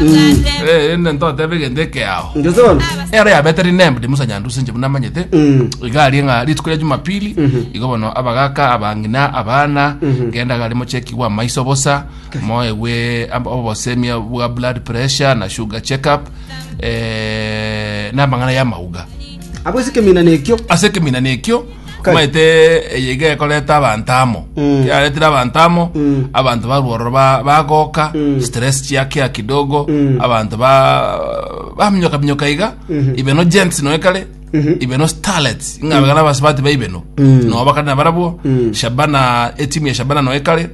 Eh, ende ntotebe egento ekeao Ngeso bono. ero yabeteri nembudi musa nyandusi nje buna manyete Mm. igari ng'a rituko ya jumapili igo bono abagaka abang'ina abana genda gari mochekigwa amaiso bosa moegwe ab- obosemia bwa blood pressure na sugar check up eh, namang'ana y'amauga Abo ase kemina nekio. ase ekemina nekio Omanyete eye iga ekoreta abanto amo Mm. kiaretire abanto amo Mm. abanto barwa ororo ba- bagoka Mm. stress chiakia kidogo Mm. abanto ba- baminyoka minyoka iga Mhm. ibeno gents noe kare Mhm. ibeno starlets ing'abegana abasubati baibeno Mm. noba kare nabarabwo Mm. shabana etimu ya shabana noe kare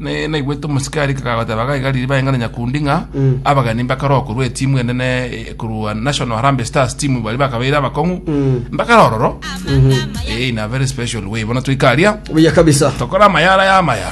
Naigwete omosike arika kagoteba gaigariri baeng'ana nyakundi ng'a abageni mbakaroa korwa etimu enene korwa National Harambee Stars timu bari bakabeire abakong'u mbakara ororo in a very special way bono toika aria buya kabisa tokora amayara ya amaya